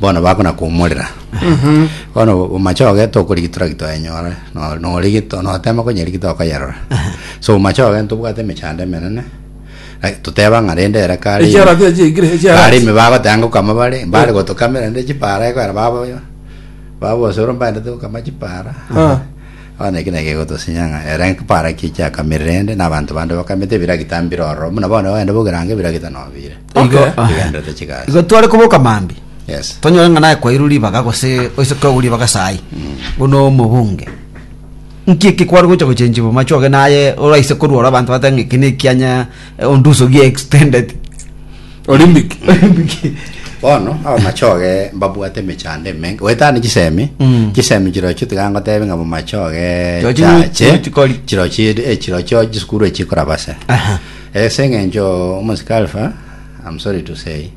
bono bakonakumorera bono omachoge tokorigitwa raki twayenyore no- norigitwa notema konyerigitwa okayerora so omachoge ntobwate emechando emenene Ai, toteba ng'a rende ere kare Ekiara ime- kira chiaikire, ekiara kare ime bagotanga ngokama bare mbare gotokamera rende chipara ekwena babo babosoro mbaendete gokama chipara Ah. bono eki naki egotosinya ng'a ere nkipara ki chiakamire rende na abanto bande bakamete ebiragita mbire ororo buna bono ogende bogerange ebiragita nobire Igo Okay. ah, Kigenderete chigasi. igo tware koboka mambia Yes. tonyore ng'a naye kwairwe ribaga gose oise kwaigwa ribaga sayi bono omobunge nki eki kware gocha gochenchi bomache oge naye oraise korwora abanto bate ng'a eki nekianya eh, onduso gie extended Olympic. Bono abamachoge mbabwate emechando emenge. Wetane chisemi. Mm. Chisemi chirochio tiga ngotebe ng'a bomachoge Chirochio chache. chirochio kori. Chirochio eh, chirochio chisukuru echikorabase. Aha. Ase eng'encho omosike Alpha, I'm sorry to say,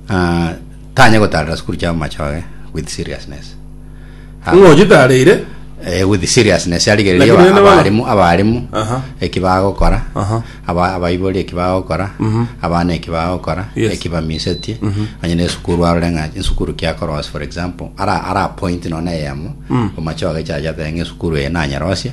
ah, tanya gotarera sukuru chia amachoge with seriousness. Ah, Ng'o chitareire? eh, with seriousness arigereria Lakini aba- nene bana- abarimu abarimu Aha. eki bagokora Aha. aba- abaibori eki bagokora abana eki bagokora Yes. eki bamisetie onye na esukuru arore ng'a esukuru kiakorosia for example ara ara point none eyemo omachoge chachate ng'a esukuru eye nanyerosia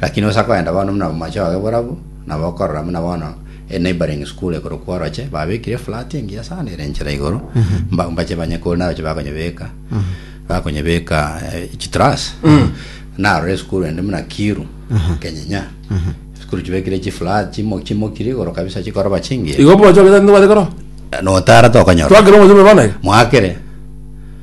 lakini ase akoenda bono buna omomache oye borabwo nabo okorora buna bono a neighboring school ekorokwa oroche babekire flat engiya sana ere enchera igoro mba- mbache banye kore naroche bakonyebeka bakonyebeka eh, chitras narore esukuru ende buna kiru kenyinya esukuru chibekire chiflat chimo- chimokire igoro kabisa chikoroba chingiya igo omomache ogetari nobate koro notara tokonyora twakere omomache bebe bono iga mwakere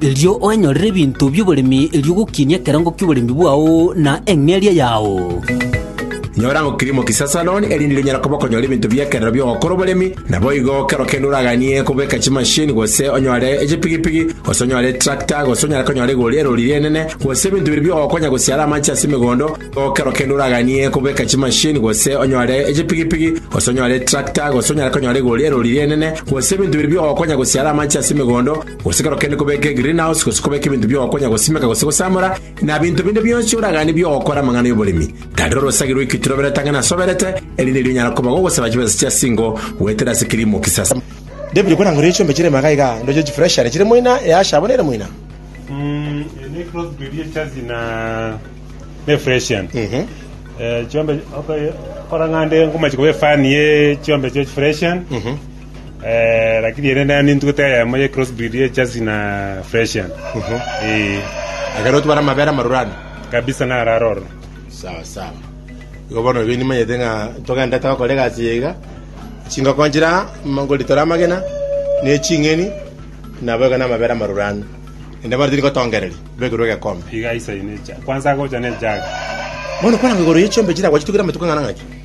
erio oenyorere ebinto bi'oboremi, erio ogokinie ekerango ki'oboremi bwao na eng'eria yao. Nyora ang'o kirimo kisia Saloni, erinde onyare koba okonyora ebinto bi'ekerero bi'ogokora oboremi. Naboigo, kero kende oraganie kobeka chimasini, gose onyore echipigipigi, gose onyore etrakta, gose onyare konyora igori erori ri'enene, gose ebinto biria bi'ogokonya gosiara amache ase emegondo. Naboigo kero kende oraganie kobeka chimasini, gose onyore echipigipigi, gose onyore etrakta, gose onyare konyora igori erori ri'enene, gose ebinto biria bi'ogokonya gosiara amache ase emegondo. Gose ekero kende kobeka egirinahosi gose kobeka ebinto bi'ogokonya gosimeka gose gosamora, na binto binde bionsi oraganie bi'ogokora amang'ana y'oboremi, tari orosagi rw'ekitu roberete ang'e nasoberete, erinde erio onyare koba gogosaba chibesa chia singo goetera ase kirimo kisasa. David okwana ng'orere chiombe chire magega iga, ndoche chifreshere chire moina, easha abwo nere moina. Lakini ere naye nintugete eyemo ye cross breed ye Jersey na Fresian. Ee. Ekero otwara amabere amaroro ano. Kabisa naro aro ororo. Sawa sawa. Igo bono ebi nimanyete ng'a togendete gokora egasi eye iga, chingoko nchire aa, mm, ngoritora amagena, na eching'eni, nabo iga na amabere amaroro ano. Naende bono tiri gotongereria, bekerwe egekombe. Iga aisaine eja. Kwanza agocha ne ejaga. Bono kwarangwa igoro ye chiombe chire agwo chitugire amatuko ang'ana ng'aki?